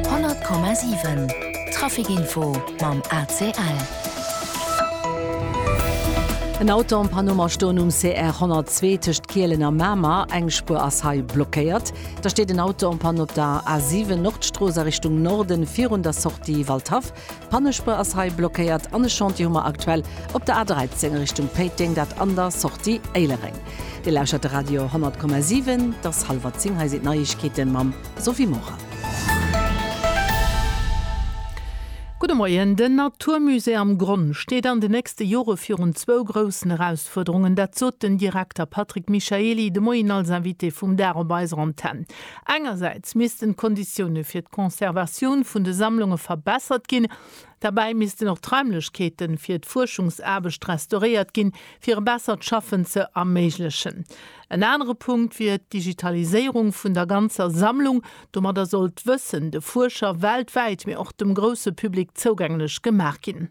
100,7 Traficinfo mam ACL. En Auto am Panoma stoen um CR 102 tëscht Kielen a Mamer. Eng Spuer ass hei blockéiert. Da steet en Auto en panne op der A7 Nordstrooss a Richtung Norden virun der Sortie Waldhaff. D'Pannespuer ass hei blockéiert an e Chantier hu mer aktuell op der A13 Richtung Péiteng, dat an der Sortie Éilereng. Dir lauschert de Radio 10,7. Et ass hallwer zéng, hei sinn d'Neiegkeete mam Sophie Maurer. Gudde Moien. Den Naturmusée am Gronn steet an de nächste Jore virun zwou groussen Erausfuerderungen. Dat sot den Direkter Patrick Michaely de Moien als Invité vum Dag op eiser Antenn. Engersäits missten d'Konditioune fir d'Conservatioun vun de Sammlunge verbessert ginn. Derbäi missten och d'Raimlechkeete fir d'Fuerschungsaarbecht restauréiert ginn, fir e bessert Schaffen ze erméiglechen. En anere Punkt wier d'Digitaliséierung vun der ganzer Sammlung. Domadder soll d'Wëssen de Fuerscher weltwäit, mee och dem grousse Public zougänglech gemaach ginn.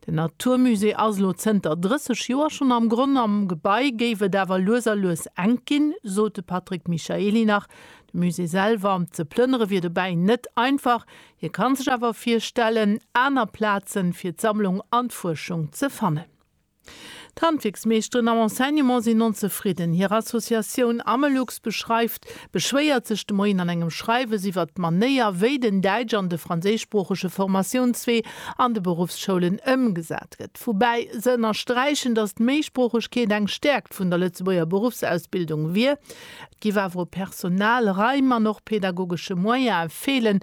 Den Naturmusée ass elo zënter 30 Joer schonn am Gronn. Am Gebai géif et awer lues a lues enk ginn, sot de Patrick Michaely nach. De Musée selwer ze plënnere wier dobäi net einfach. Hie ka sech awer virstellen, aner Plaze fir d'Sammlung an d'Fuerschung ze fannen. D'Handwierksmeeschteren am Enseignement sinn onzefridden. Hir Associatioun Amelux beschreift beschwéiert sech de Moien an engem Schreiwes iwwert d'Manéier, wéi den däitsch an de franséischsproochege Formatiounswee an de Beruffsschoulen ëmgesat gëtt. Woubäi se ënnersträichen, datt d'Méisproochegkeet eng Stäerkt vun der Lëtzebuerger Beruffsausbildung wier. Et géif awer u Personal, Raim an och pädagogesche Moyene feelen,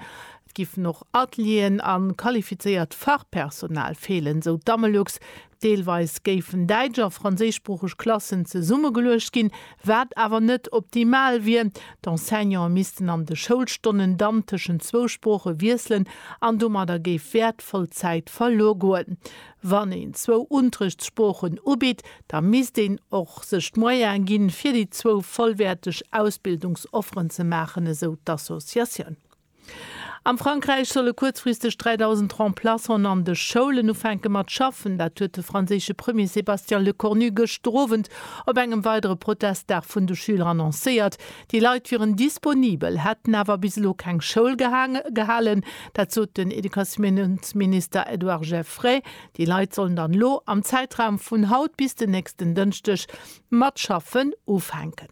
Et giffen och Atelieren a qualifizéiert Fachpersonal feelen, sou d'Amelux. Deelweis géifen däitsch a franséischsproocheg Klassen zesummegeluecht ginn, wat awer net optimal wier. D'Enseignante missten an de Schoulstonnen dann tëschent zwou Sprooche wiesselen an domadder géif wäertvoll Zäit verluer goen. Wann een zwou Unterrichtssproochen ubitt, da misst een och sech d'Moyene ginn, fir déi zwou vollwäerteg Ausbildungsofferen ze maachen, esou d'Associatioun. Am Frankräich solle kuerzfristeg 3.000 Remplaçanten an de Schoulen ufänke mat schaffen. Dat huet de franséische Premier Sébastien Lecornu gëschter Owend op engem weidere Protestdag vun de Schüler annoncéiert. Déi Leit wieren disponibel, hätten awer bis elo keng Schoul gehalen. Dat sot den Educatiounsminister Edouard Geffray. Déi Leit sollen dann elo am Zäitraum vun haut bis den nächsten Dënschdeg mat schaffen ufänken.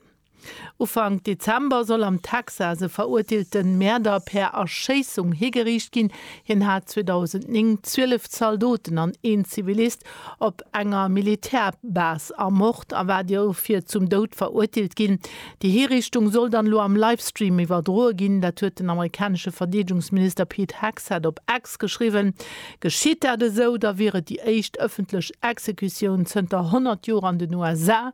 Ufank Dezember soll am Texas e verurteelte Mäerder per Erschéissung higeriicht ginn. Hien hat 2009 zwielef Zaldoten an een Zivilist op enger Militärbase ermort a war dofir zum Doud verurteelt ginn. Déi Hiriichtung soll dann elo am Livestream iwwerdroe ginn. Dat huet den amerikanesche Verdeedegungsminister Pete Hegseth op X geschriwwen. Geschitt dat esou, da wier et déi éischt ëffentlech Exekutioun zënter 100 Joer an den USA.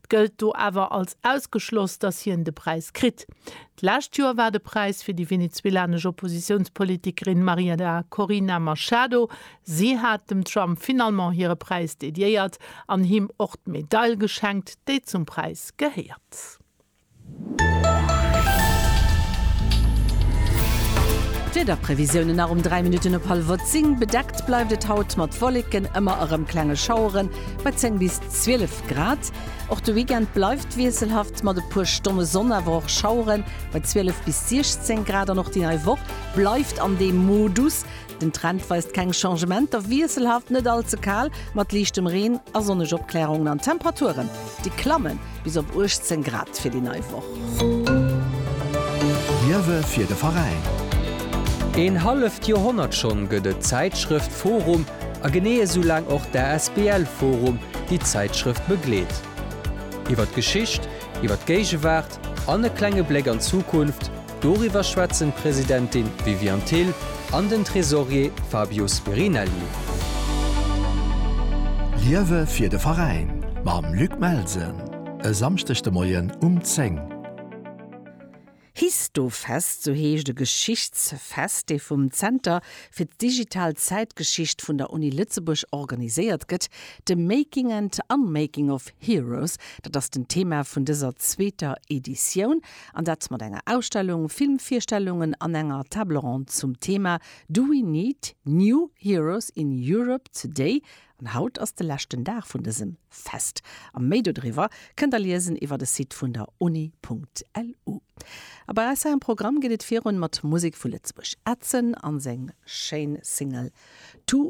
gëllt do awer als ausgeschloss, datt hien de Präis kritt. D'lescht Joer war de Präis fir déi venezuelanesch Oppositiounspolitikerin Mariana Corina Machado. Si hat dem Trump finalement hire Präis dediéiert an him och d'Medail geschenkt, déi zum Präis gehéiert. D'Wiederprevisiounen nach um 3 Minutten op hallwer 10, Bedeckt bleift et haut mat Wolleken, ëmmer erëm klenge Schaueren bei 10 bis 12 Grad. Och de Weekend bleift wiesselhaft mat e puer Stonne Sonn, awer och Schaueren bei 12 bis 16 Grad. An och déi nei Woch bleift an deem Modus. Den Trend weist keng Changementer, wiesselhaft, net all ze kal, mat liichtem Reen a sonneg Opklärungen an Temperaturen, déi klamme bis op 18 Grad fir déi nei Woch. Liewe fir de Veräin. Een halleft Joerhonnert schonn gëtt et d'Zäitschrëft forum a genee esou laang och d'ASBL forum, déi d'Zäitschrëft begleet. Iwwer d'Geschicht, iwwer d'Géigewaart an e klenge Bléck an d'Zukunft Doriwwer schwätzen d'Presidentin Viviane Thill an den Tresorier Fabio Spirinelli. Liewe fir de Veräin mam Luc Melsen e Samschdeg de Moien um 10. Histofest, sou heescht e Geschichtsfest, dee vum Zenter fir d'Digital Zäitgeschicht vun der Uni Lëtzebuerg organiséiert gëtt. The Making and Unmaking of Heroes, dat ass den Thema vun dëser zweeter Editioun. An dat mat enger Ausstellung, Filmvirstellungen an enger Table ronde zum Thema Do we need new heroes in Europe today? An haut ass de leschten Dag vun dësem Fest. A méi dodriwwer kënnt der liesen iwwer de Site vun der uni.lu. A bei eis hei am Programm geet et virun mat Musek vu Lëtzebuerg. Edson a seng schéin Single To.